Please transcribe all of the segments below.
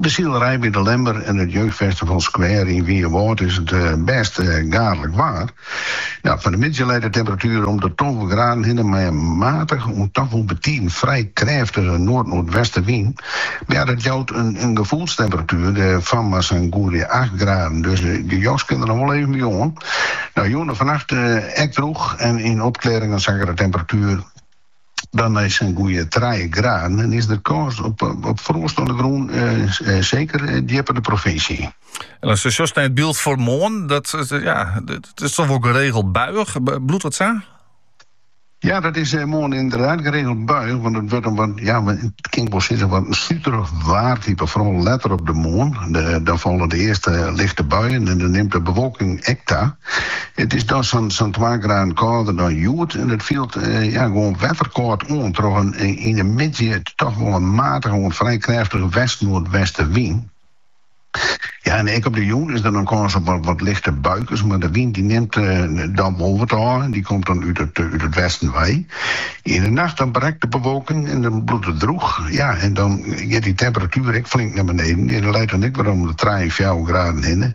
De silerij by De Lemmer en it Jeugdfestival Square yn Wynjewâld is it bêst gaadlik waar. Fan 'e middei leit de temperatuer om de tolve graden hinne mei in matige oant toch wol betiden frij krêftige noardnoardwestewyn. Dat jout in gefoelstemperatuer fan mar sa'n goeie acht graden, dus de jas kin der noch wol even by oan. Jûn en fannacht ek drûch en yn opklearringen sakket de temperatuer. Dan nei sa'n goeie trije graden en is der kâns op froast oan 'e grûn, seker djipper de provinsje yn. En as je sjochst nei it byld foar moarn, dat is toch wol geregeld buiïch, bliuwt dat sa? Ja, dat is eh, moarn ynderdaad geregeld buiïch, want it wurdt in wat, ja, it kin ik wol sizze, wat in suterich waartype. Foaral letter op de moarn, dan falle de earste lichte buien en dan nimt de bewolking ek ta. It is dan sa'n twa graden kâlder dan hjoed en it fielt gewoan wetterkâld oan troch in yn de middei toch wol in matige oant frij krêftige west-noardwestewyn. Ek op de jûn is der dan kâns op wat lichte buikens, mar de wyn dy nimt dan wol wat ôf en dy komt dan út it westen wei. Yn de nacht dan brekt de bewolking en dan bliuwt it drûch en dan giet dy temperatuer ek flink nei beneden. Dy leit dan ek wer om de trije fjouwer graden hinne.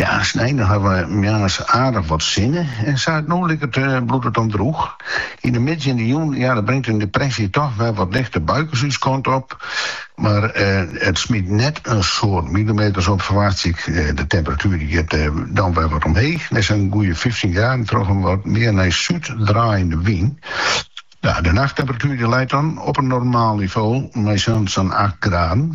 Ja, snein dan hawwe we moarns aardich wat sinne, en sa it no liket bliuwt it dan drûch. Yn de middei en de jûn, ja, dan bringt in depresje toch wer wat lichte buikens ús kant op, mar it smyt net in soad milimeters op, ferwachtsje ik. De temperatuer dy giet dan wer wat omheech nei sa'n goeie fyftjin graden troch in wat mear nei súd draaiende wyn. De nachttemperatuer dy leit dan op in normaal nivo mei sa'n acht graden.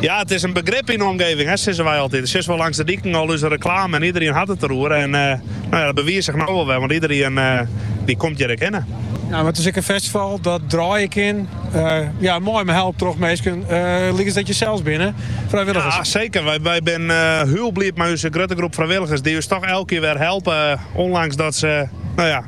Ja, it is in begrip yn de omgeving, hè, sizze wy altyd. Sjochst wol langs de diken al ús reklame en iederien hat it deroer. En eh, nou ja, dat bewiist zich no wol wer, want iederien eh, dy komt hjir ek hinne. No, mar it is ek in festival dat draaie kin. Eh, ja, mei, mei help troch minsken. Uh, eh, lykas dat jim sels binne, frijwilligers. Ja, seker. Wy, wy binne uh, eh, hiel bliid mei ús grutte groep frijwilligers. Dy't ús toch elke kear wer helpe. Ondanks dat se, no ja,